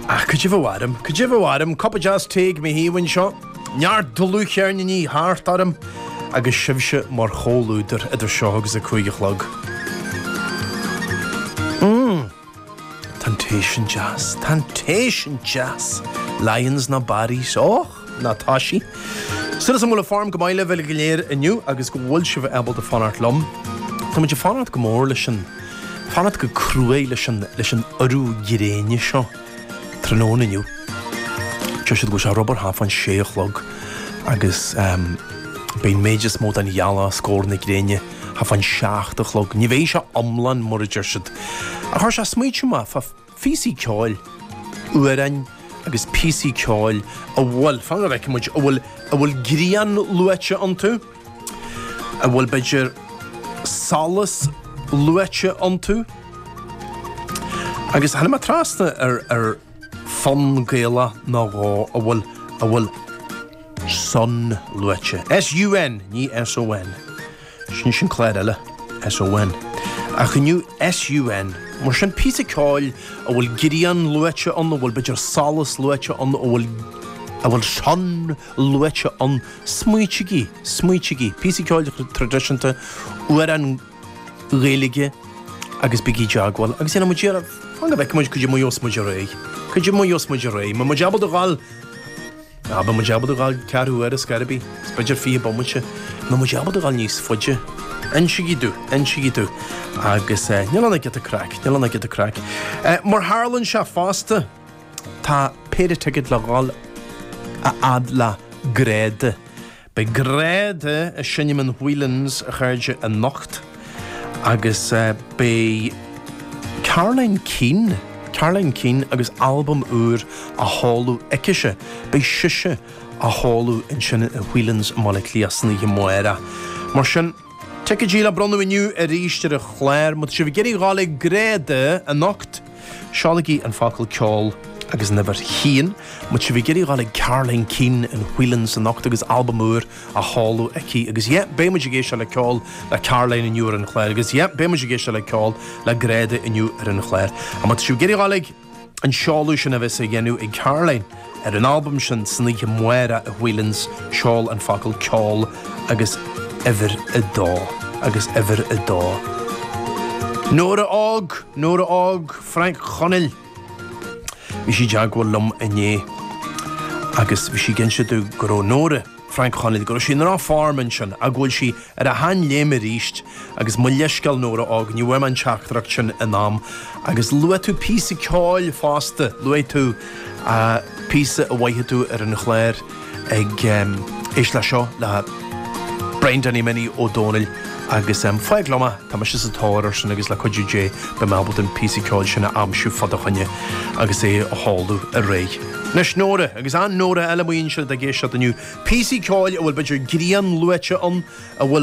Ah, cad é bheadh orm? Cad é bheadh orm? Cupa deas tae ag mo thaobh anseo, neart dlúthcheirníní thart orm agus sibhse mar chomhluadar idir seo agus a cúig a chlog. Mmm. Tá an tae sin deas. Tá an tae sin deas. Lyons nó Barry's. Och! ná tá sí. Súil is go bhfuil an form go maith libh uilig go léir inniu agus go bhfuil sibh ábalta fanacht liom. Táimid ag fanacht go mór leis an, fanacht go cruaidh leis an, leis an urú gréine seo tráthnóna inniu. Deir siad go bhfuil sé ar, abair, thart fán sé a chlog agus beidh an méid is mó den ghealach os comhair na gréine thart fán seacht a chlog. Ní bheidh sé iomlán mar a deir siad. Ach chuir sé ag smaoitiú mé, phíosaí ceoil, amhráin agus píosaí ceoil a bhfuil, fan go bhfeicfidh muid, a bhfuil, a bhfuil grian luaite iontu, a bhfuil b'fhéidir solas luaite iontu agus tháinig mé trasna ar, ar fonn Gaelach nó dhó a bhfuil, a bhfuil sun luaite, S-U-N, ní S-O-N. Sin sin clár eile. S-O-N, Ach inniu S-U-N, Mar sin, píosa ceoil a bhfuil grian luaite ann, a bhfuil, b'fhéidir, solas luaite ann, a bhfuil, a bhfuil sun luaite ann, smaoitigí, smaoitigí, píosa ceoil traidisiúnta, amhrán Gaeilge agus bígí i dteagmháil agus déanfaidh muid iarracht, fan go bhfeicfidh muid, cad é mar gheobhas muid ar aghaidh, cad é mar gheobhas muid ar aghaidh, mbeidh muid ábalta dhul. An bhfuil muid ábalta dhul ceathrú uair is gairbí? Is b'fhéidir fiche bomaite. An bhfuil muid ábalta dhul níos faide? Insigí domh, insigí domh. Agus níl ann ach giota craic, níl ann ach giota craic. Mar tharla anseo fosta, tá péire ticéad le dhul a fhad le Gráda. Beidh Gráda ag seinm in Whelan's a chairde anocht agus beidh Caroline Keane, Caroline Keane agus albam úr á sheoladh aicise, beidh sise á sheoladh ansin i Whelan's i mBaile Átha Cliath san oíche amárach. Mar sin. Ticéadaí le bronnadh inniu arís ar an chláir. Má tá sibh ag iarraidh dhul ag Gráda anocht, seolaigí an focal 'ceol' agus an uimhir a haon. Má tá sibh ag iarraidh dhul ag Caroline Keane in Whelan's anocht agus albam úr á sheoladh aici, agus yeah, beidh muid ag éisteacht le ceol le Caroline inniu ar an chláir, agus yeah, beidh muid ag éisteacht le ceol le Gráda inniu ar an chláir. Má tá sibh ag iarraidh dhul ag. an seoladh sin a bheas á dhéanamh ag Caroline ar an albam sin san oíche amárach i Whelan's Seol an focal ceol agus uimhir a dó agus uimhir a dó Nóra Óg Nóra Óg Frainc Chonaill Bhí sí i dteagmháil liom inné agus bhí sí ag inse domh go raibh Nóra Frainc Chonaill, go raibh sí ina ráth formáin sin ach go bhfuil sí ar a seanléim arís agus mo leithscéal Nóra og ní bhfuair mé an teachtaireacht sin in am agus luaigh tú píosa ceoil fosta luaigh tú píosa ab fhearr leat ar an chlár éist leis seo le Brian Danny Minnie Ó Dónaill agus fág liom é. Tá mise sa tóir ar sin agus le cuidiú Dé beidh mé ábalta an píosa ceoil sin a aimsiú fá do choinne agus é a sheinm ar aer. Anois Nóra, agus an Nóra eile, má bhíonn siad ag éisteacht inniu, píosaí ceoil a bhfuil b'fhéidir grian luaite ann, a bhfuil.